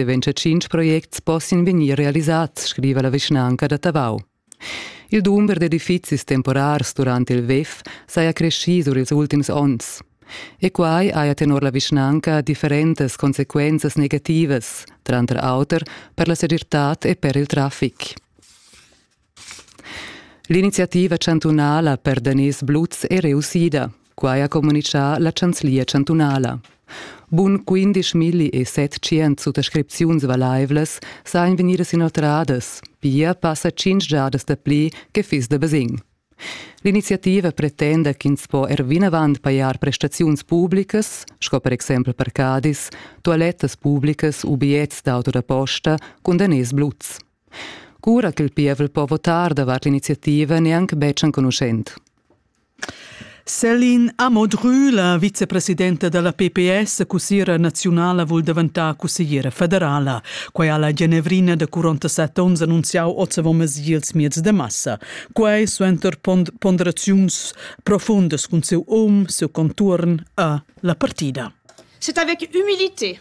Deventscha tschintg projects possin vegnir realisats, scriva la vischnanca da Tavau. Il dumber d'edifizis temporars durant il WEF saja creschì sur ils ultims onns. E quai haja tenor la vischnanca differentas consequenzas negativas, tranter auter per la segirtad e per il traffic. L'iniziativa chantunala per daners bluts è reussida, quai ha communitgà la chanzlia chantunala. Bun 15.700 suttascripziuns valaivlas sajan vegnidas inoltradas, pia passa tschintg giadas dapli che fiss da basegn. L'iniziativa pretenda ch'ins po er vinavant pajar prestaziuns publicas, sco per exempel parcadis, toalettas publicas u bigliets d'auto da posta cun daners bluts. Cura ch'il pievel po votar davart l'iniziativa n'è anc betg enconuschent. Céline Amodru, la vicepresidenta da la PPS, cussiera naziunala vul daventar cussiera federala. Quai ha la Genevrina da 47 onns annunziau oz avon mesi ils mieds de massa. Quai suenter ponderaziuns profundas cun siu um, siu contuorn e la partida. C'est avec humilité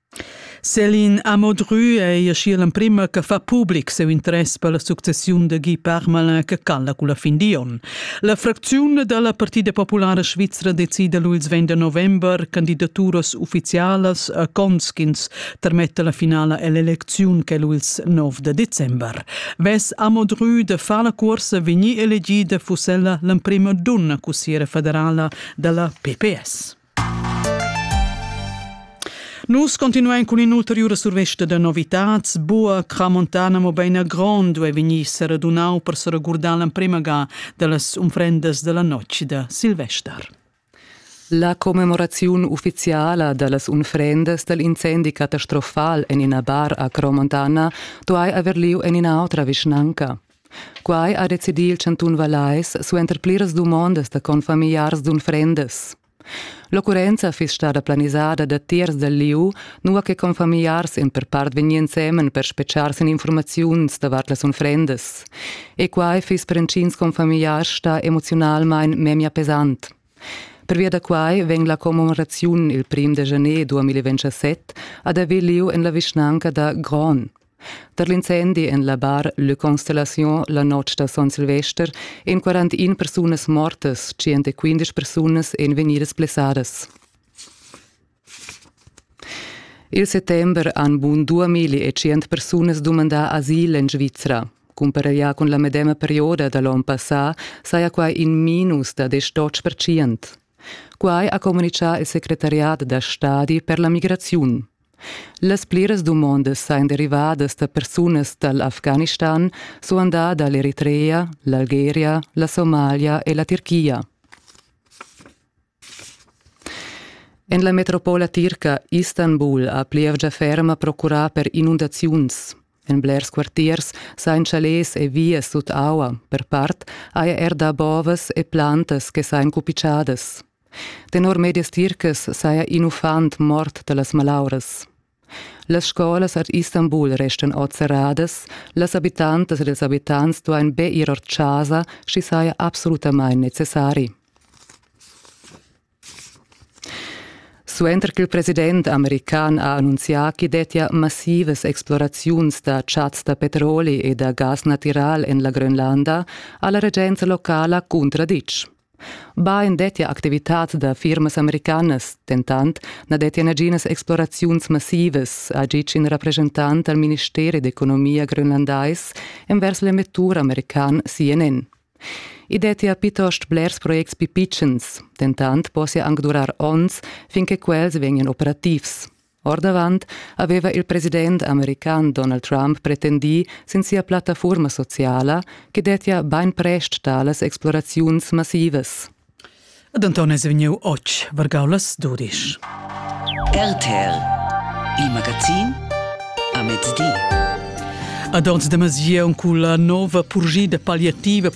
Céline Amodru ei aschia l'emprema che fa public siu interess per la successiun da Guy Parmelin che cala culla fin di onn. La fracziun dalla Partida populara svizra decida lu ils vend da november candidaturas ufficialas a cons ch'ins termetta la finala ell'elecziun che lu ils nov da december. Vess Amodru da far la cuorsa vegnir elegida fuss ella l'emprema dunna cussiera federala dalla PPS. Nus continuein cun in'ulteriura survesta da novitads. Bua Cramontana, mobein a Grond, duei vegnir seradunau per seregurdar l'emprema ga dallas unfrendas dalla notg da Silvester. La commemoraziun ufficiala dallas unfrendas dal incendi catastrofal en ina bar a Cromontana duai haver lieu en ina autra vischnanca. Quai ha decidì il chantun Vallais suenter pliras dumondas da confamigliars d'unfrendas. L'occurrenza fiss stada planisada da tiers dal lieu, nua che confamigliars èn per part vegnì ensemen per spetgar sin informaziuns davart las unfrendas. E quai fiss per intgins confamigliars stà emoziunalmain memia pesant. Pervia da quai vegn la commemoraziun il prim da janer 2027 ad haver lieu en la vischnanca da Gron. Tar l'incendi en la bar Le Constellation la notg da Son Silvester èn 41 persunas mortas, 115 persunas èn vegnidas blessadas. Il settember han bun 2000 persunas dumandà asil en Svizra. Cumpareglià cun la medema perioda da l'onn passà saja quai in minus da 10%. Quai ha communitgà il secretariat da stadi per la migraziun. Las pliras dumondas ein derivadas da persunas dall'Afghanistan, suandà dall'Eritrea, l'Algeria, la Somalia e la Tirchia. En la metropola tirca Istanbul ha plievgia ferma procurà per inundaziuns. En blers quartiers sain chalets e vias sut aua, per part, haja er da bovas e plantas che sain cupichadas. Tenor medias tircas saja in uffant mort da las malauras. Las scolas ad Istanbul restan oz serradas, las abitantas ed ils abitants duain be ir or chasa, sch'i saja absolutamain necessari. Suenter ch'il president american ha annunzià ch'i dettia massivas exploraziuns da chats da petroli e da gas natiral en la Grönlanda, ha la regenza locala cuntraditg. Bain dettia activitads da firmas americanas, dentant na dettia naginas exploraziuns massivas, ha ditg in represchentant dal ministeri d'economia grönlandais envers l'emettur american CNN. I dettia plitost blers projects pipitschens, dentant possia anc durar onns fin che quels vegnan operativs. Ordavant aveva il president american Donald Trump pretendì sin sia plattafurma sociala che dettia bainprest talas exploraziuns massivas. Ed Anton è vegniu oz vargau las dudisch. RTL, il magazin a mezdi. Ad ons de Masier cun la nova purgida palliativa per